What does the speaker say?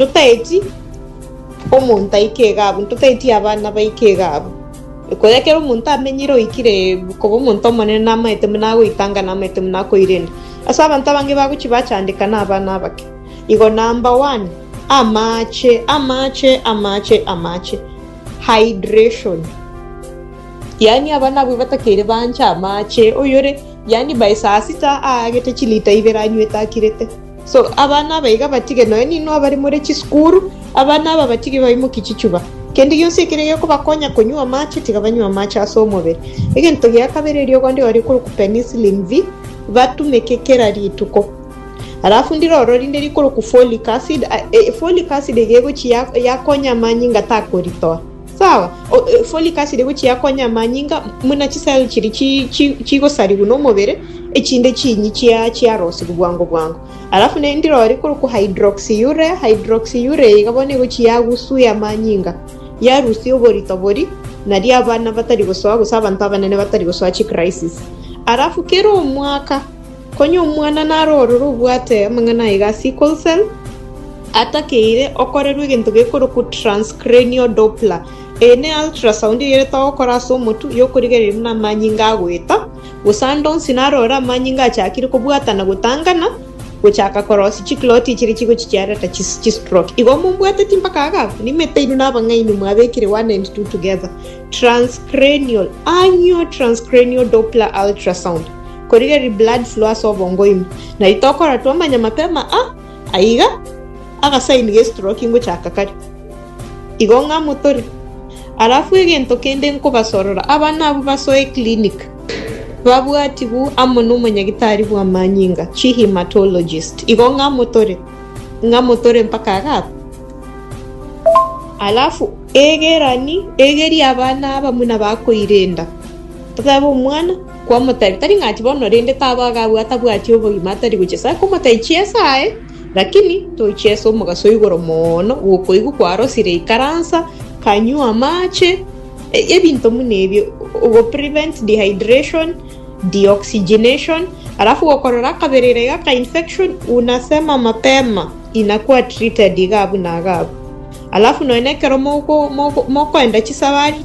Totaeti omonto aike iga abwo, totaeti abana baike iga abwo. Ekoyo ekero omonto amenyire oikire koba omonto omonene namaete buna agoitanga namaete buna akoirenda. Ase abanto abange bagochi bachandeka nabana abake. Igo number one, amache, amache, amache, amache. Hydration. Yaani abana abwo batakeire bancha amache, oyore yaani by saa sita aagete chilita ibere anywete akirete. So abana aba iga batige, nonya ninwe abare more chisukuru, abana aba batige baimokie chichuba. Kende gionsi ekere gekobakonya konywa amache, tiga banywe amache ase omobere. Egento gia kabere eriogo ndiro rikorokwa penicillin V, batumeke kera rituko. Alafu ndiro oro rinde rikorokwa folic acid, a- e- folic acid iga egochi ya- yakonya amanyinga takoritoa. Sawa, o- e, folic acid gochia konya amanyinga muna chisel chiri chi- chi- chigosarigwa nomobere echinde chinyi chia chiarosigwa bwango bwango alafu ne ndirori korokwo hydroxyurea hydroxyurea iga bono egochi yagusuya amanyinga yarusia oborito bori nari abana batari gosoa gose abanto abanene batari gosoa chicrisis alafu kera omwaka Konya omwana narorore obwate amang'ana aye ga sickle cell atakeire, okorerwe egento gekorokwa transcranial Doppler. Eye ne ultrasound eyere togokora ase omotwe, yokorigereria buna amanyinga agoeta, gose ande onsi narorore amanyinga achakire kobwatana gotangana, gochaka korosia chikloti echiria chigochichiareta chistroke. Igo mombwateti mpaka agakwa? Nimeteirwe nabang'aini mwabekire one and two together. Transcranial, annual transcranial Doppler ultrasound. Korigereria blood flow ase obongo ime. Nari tokora twamanya mapema a aiga agasign ge stroke ingochaka kare. Igo ng'a motore. Alafu egento kende nkobasorora abana abwo basoe clinic babwatibu amo na omonyagitari bwamanyinga chi hematologist. Igo ng'a motore. Ng'a motore mpaka agakwa. Alafu egerani egeria abana aba muna bakoirenda. Totebe omwana. Kwamotebia, Tari ng'ati bono, rende taba agabua atabwati obogima atari gochia ase akomotai chiesa aye, rakini tochia ase omogaso o igoro mono bw'okoigwa kwarosire ikaransa, kanywa amache, e- ebinto buna ebio, ogoprevent dehydration, deoxygenation, alafu gokorora akaberera iga ka infection, unasema mapema, inakuwa treated iga abuna iga abwo. Alafu nonya na ekero moko- moko- mokoenda chisabari,